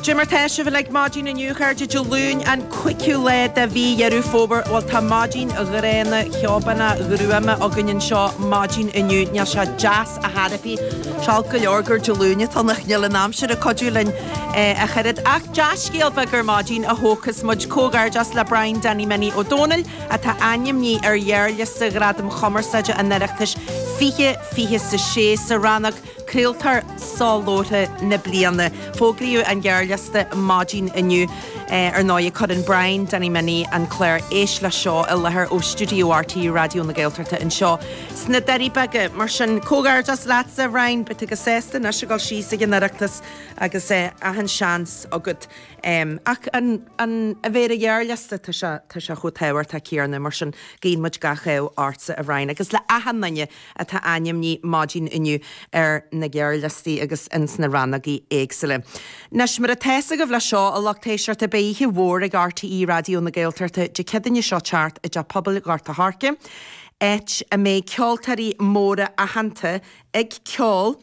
Cad é mar tá sibh uilig maidin inniu, chairde, Dé Luain, an cúigiú lá de mhí Dheireadh Fómhair. Bhuel, tá maidin ghránna, cheobháistí, ghruama againn anseo maidin inniu. Níl sé deas ar chor ar bith. Is olc go leor gurb é an Luan atá ann ach níl an aimsir ag cuidiú linn ach oiread. Ach dea-scéal beag ar maidin a thógfas muid, comhghairdeas le Brian Danny Minnie Ó Dónaill atá ainmnithe ar ghearrliosta Ghradaim Chumarsáide an Oireachtais 2026 sa rannóg Craoltóir Soláthair na Bliana. Fógraíodh an gearrliosta maidin inniu. Ar ndóigh, cuireann Brian Danny Minnie an clár Éist le Seo i láthair ó stiúideo RTÉ Raidió na Gaeltachta anseo sna Doirí Beaga. Mar sin, comhghairdeas leatsa, a Bhriain. Beidh tú go sásta anois ag gabháil síos chuig an Oireachtas agus achan seans agat. Ach fán a bheith ar an ghearrliosta, tá sé chomh tábhachtach céanna. Mar sin, guíonn muid gach ádh ortsa, a Bhriain, agus le achan duine. atá ainmnithe maidin inniu ar na gearrliostaí agus ins na rannógaí éagsúla. Nois, mar atá a fhios agaibh leis seo a lucht éisteachta, beidh oíche mhór ag RTÉ Raidió na Gaeltachta Dé Céadaoin seo ag teacht i dTeach Pobail Ghort a' Choirce, áit a mbeidh ceoltóirí móra aitheanta ag ceol.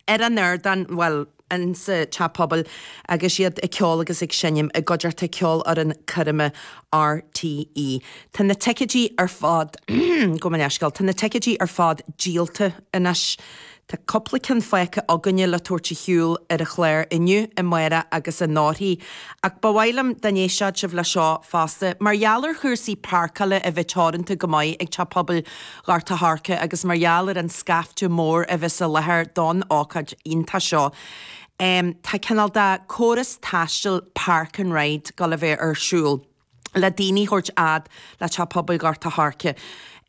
ar an ardán, bhuel, insa teach pobail agus iad ag ceol agus ag seinm i gcuideachta Ceolfhoireann Coirme RTÉ. Tá na ticeidí ar fad, gabh mo leithscéal, tá na ticeidí ar fad díolta anois. Tá cúpla ceann fágtha againne le tabhairt a shiúl ar an chlár inniu, amárach agus anóirthear, ach ba mhaith liom dá n-éistfeadh sibh leis seo fosta. Mar gheall ar chúrsaí páirceála a bheith teoranta go maith ag teach pobail, Ghort a' Choirce agus mar gheall ar an scaifte mór a bheas i láthair don ócáid iontach seo tá cineál de chóras taistil Park and Ride ag gabháil a bheith ar siúl le daoine a thabhairt fhad le teach pobail Ghort a' Choirce.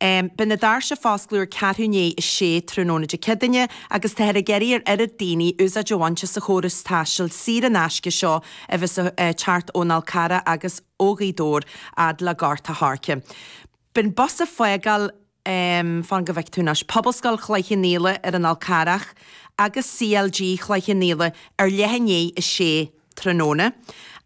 Beidh na doirse ag foscladh ar ceathrú i ndiaidh a sé tráthnóna Dé Céadaoin agus táthar ag iarraidh ar oiread daoine úsáid a bhaint as an chóras taistil saor in aisce seo a bheas ag teacht ón Fhál Carrach agus ó Ghaoth Dobhair fhad le Gort a' Choirce. Beidh an bus ag fágáil fan go bhfeice tú anois. Pobalscoil Chloich Chionn Fhaola ar an Fhál Carrach agus CLG Chloich Chionn Fhaola ar leath i ndiaidh a sé tráthnóna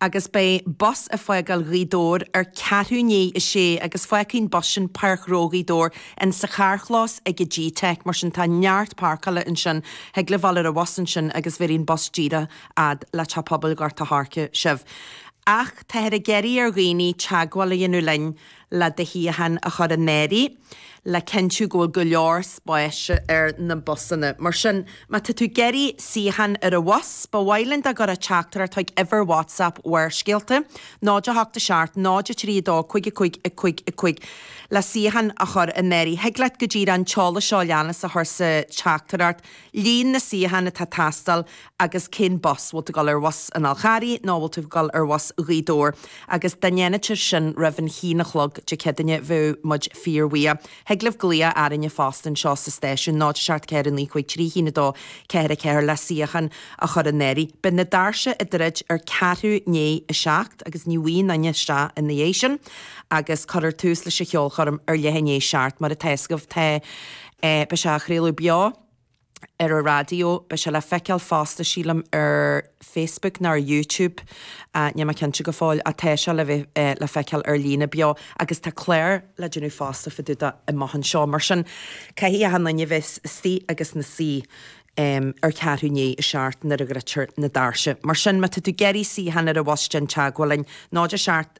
agus beidh bus ag fágáil Ghaoth Dobhair ar ceathrú i ndiaidh a sé agus fágfaidh an bus sin Páirc Ghró Ghaoth Dobhair in sa charrchlós ag G-Tech mar sin tá neart páirceála ansin thig libh a ghabháil ar an bhus ansin agus bhéarfaidh an bus díreach fhad le Teach Pobail Ghort a' Choirce sibh ach táthar ag iarraidh ar dhaoine teagmháil a dhéanamh linn le do shuíochán a chur in áirithe, le cinntiú go bhfuil go leor spáis ar na busanna. Mar sin, má tá tú ag iarraidh suíochán ar an bhus, ba mhaith linn dá gcuirfeá teachtaireacht chuig uimhir WhatsApp Bharrscéalta, 087 032 55 55, le suíochán a chur in áirithe. Thig leat go díreach an t-eolas seo a leanas a chur sa teachtaireacht. Líon na suíochán atá ag teastáil agus cén bus, bhfuil tú ag dul ar bhus an Fhalcarraigh nó bhfuil tú ag dul ar bhus Ghaoth Dobhair agus dá ndéanfaí sin roimh an haon a chlog Dé Ceadaoine bheadh muid fíor bhuíoch. Thig libh glaoch orainne fosta anseo sa stáisiún 0 7 4 9 5 3 1 2 4 4 le suíochán a chur in áirithe. Beidh na doirse ag druid ar ceathrú i ndiaidh a 7 agus ní ligfear éinne isteach ina dhiaidh sin agus cuirfear tús leis an cheolchoirm ar leath i ndiaidh a 7 mar atá fhios agaibh tá Beidh sé á chraoladh beo ar an raidió. Beidh sé le feiceáil fosta, sílim, ar Facebook nó ar YouTube, níl mé cinnte go fóill, ach tá sé le bheith le feiceáil ar líne beo. Agus tá clár le déanamh fosta fadúda do amach anseo. Mar sin, caithfidh achan duine bheith istigh agus na suí ar ceathrú i ndiaidh a seacht nuair a dhruidtear na doirse. Mar sin, má tá tú ag iarraidh suíochán ar an bhus déan teagmháil linn. Nód a seacht.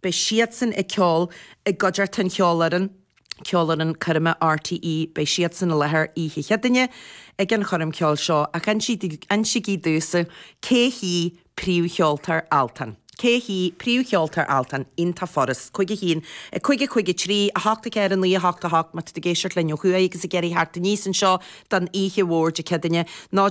Beidh siadsan ag ceol i gcuideachta Ceolfhoireann Ceolfhoireann Coirme RTÉ. Beidh siadsan i láthair oíche Chéadaoine ag an choirm ceoil seo ach insígí domhsa Cé hí príomhcheoltóir Altan? Cé hí príomhcheoltóir Altan? Aon Tá Foras cúig a haon a cúig a cúig a trí, a hocht, a ceithre, a naoi, a hocht, a hocht, Má tá tú ag éisteacht linn ó thuaidh agus ag iarraidh a theacht aníos anseo don oíche mhór Dé Céadaoine, ná.